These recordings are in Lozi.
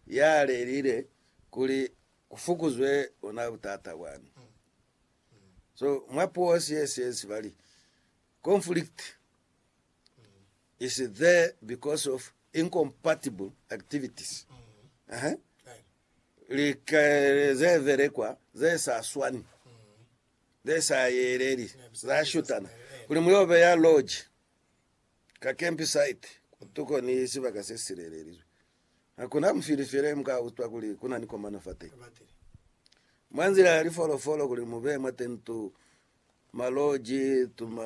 ya lelile kuli ku fukuzwe bona butata bwani. So mwa puo siesiye sibali conflict is there because of incompatible activities Aha. lika ze velekwa ze sa swani ze sa yeleli za shutana kuli muyobe ya lodge ka camp site kutuko ni sibaka se silelelizwe Hakuna musili fele mu ka utwa kuli ku na ni komano fateñi. Mwa nzila ya lifolofolo kuli mu be mwa tentu, maloji, tuma,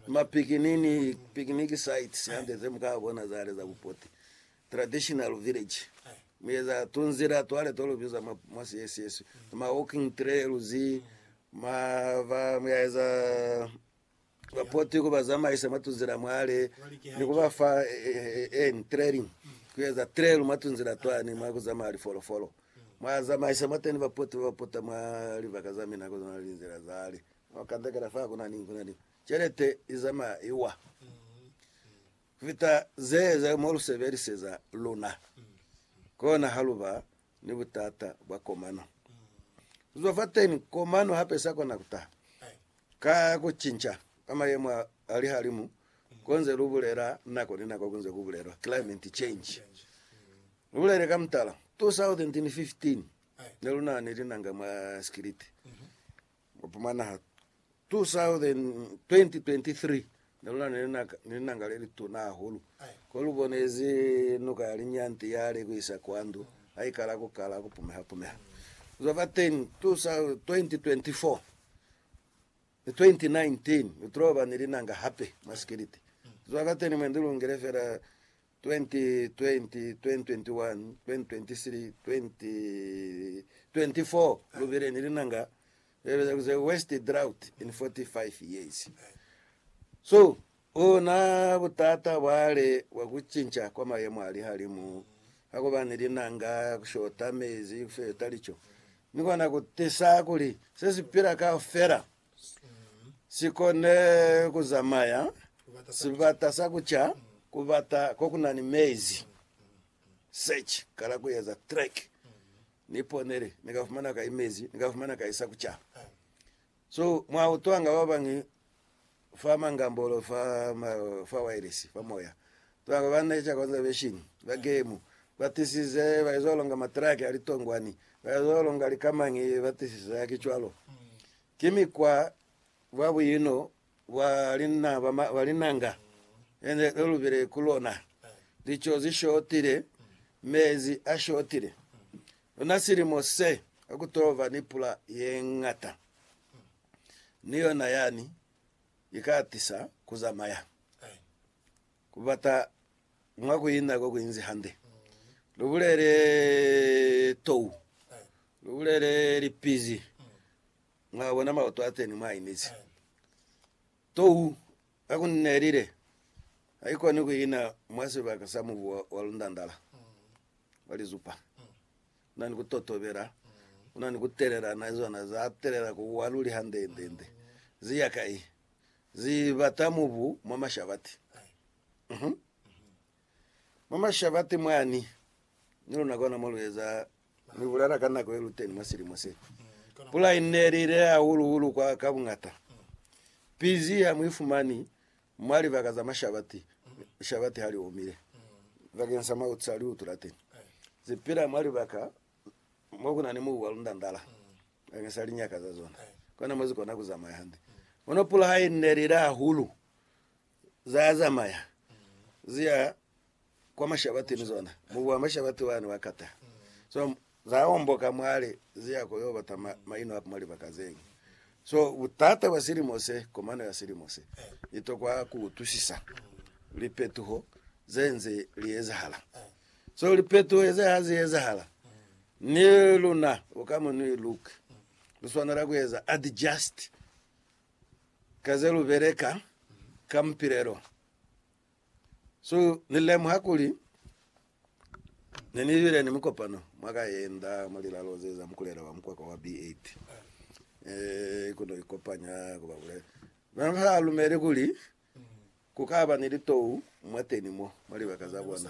ma picnic sites hande ze mu ka bona za le za bupoti, traditional village, mu eza tunzila twale to lu biza mwa Siesieswi, tuma walking trails, ma ba mu ya eza ba poti ku ba zamaisa mwa tunzila mwale ni ku ba fa en training ku eza trail mwa tunzila twani mwa ku zamaya lifolofolo. Mwa zamaisa mwateni ba poti ba ba pota mwa libaka za mina kono na linzila zale mwa ku kandakela fa kuna ni kuna ni celete i zamaya i wa kufita ze za mo lu sebeliseza luna kona ha lu ba ni butata bwa komano. Ku zwa fateni, komano hape sa kona ku taha ka ku cinca kwa mayemo a lihalimu ko nze lu bulela nako ni nako ku nze ku bulelwa climate change. Lu bulele ka mutala, 2015 ne lu na ni linanga mwa sikiliti Mupumana 2023 ne lu na ni langa le lituna hahulu, ko lu bonezi nuka ya linyanti ya li kuisa kwa ndu ha i kala ku kala ku pumeha-pumeha. Ku zwa fateni, 2024 ni 2019 lu toloba ni linanga hape mwa sikiliti. Ku zwa fateni mwe ndi lungile fela 2020, 2021, 2023, 2024 lu bile ni linanga le li biza the worst drought in 45 years. So ona butata bwale bwa ku cinca kwa mayemo a lihalimu, ha ku ba ni linanga, ku shota mezi, ku shota lico, ni kona ku tisa kuli se si pila kaufela si kone ku zamaya sibata sa ku ca ku bata ko ku na ni mezi. Search, kala ku eza track. Ni ponele, ni ka fumana kai mezi, ni ka fumana kai sa ku ca. So, mwa utwanga ba bañwi fa mangambolo fa, ma, fa wireless, fa moya. Ba ba na ica conservation ba gemu ba tisize ba izo longa matraki a litongwani, ba izo longa likamañi ba tisize haki cwalo. Ki mikwa bwa buino bwa lina ba ma, ba linanga e ne lu lubile ku lona. Lico zi shotile, mezi a shotile. Ona silimo se ha ku to ba ni pula ye ñata, ni yona yani i ka atisa ku zamaya. Ku bata mwa ku ina ko kunzi hande. Lu bulele tou. Lu bulele lipizi. Mwa bona maoto a teni mwa inezi. Tou ha ku nelile, ha i koni ku ina mwa sibaka sa mubu wa, wa lundandala, wa lizupa. Ku na ni ku totobela, ku na ni ku telela na zona, za telela ku wa luli hande, hande, hande. Zi ya kai? Ze bata mubu mwa mashabati. Uh-huh. Mwa mashabati mwani, ni luna kona mo lu eza mibulala ka nako ye lu teni mwa silimo se. Pula i ne li ile hahulu-hulu kwa ka buñata. Pizi ha mu ifumani mwa libaka za mashabati, lishabati ha li omile. Bakeng sa mautu sa liutu la teni, ze pila mwa libaka Mo ku na ni mubu wa lundandala bakeng sa linyaka za zona, kona mo zi kona ku zamaya hande. Kono pula ha i neli hahulu, za zamaya zi ya kwa mashabatini zona. Mubu wa mashabati wa ne wa kata, so za omboka mwale zi ya ko yo bata maino a mwa libaka ze ñwi. So butata bwa silimo se, komano ya silimo se, i tokwa ku utwisisa lipetuho ze nze li ezahala. So lipetuho heze ha zi ezahala, ni luna bo ka mo ni luk lu swanela ku eza adjust ka ze lu beleka ka mupilelo. So ni lemuha kuli ne ni bile ni mukopano mwa ka yenda mwa lilalo ze za mukulela wa mukwakwa wa B8, eh, ku no ikopanya ku ba bulela. Na ba sa lumeli kuli ku ka ba ni litou mwateni mo mwa libaka za bona.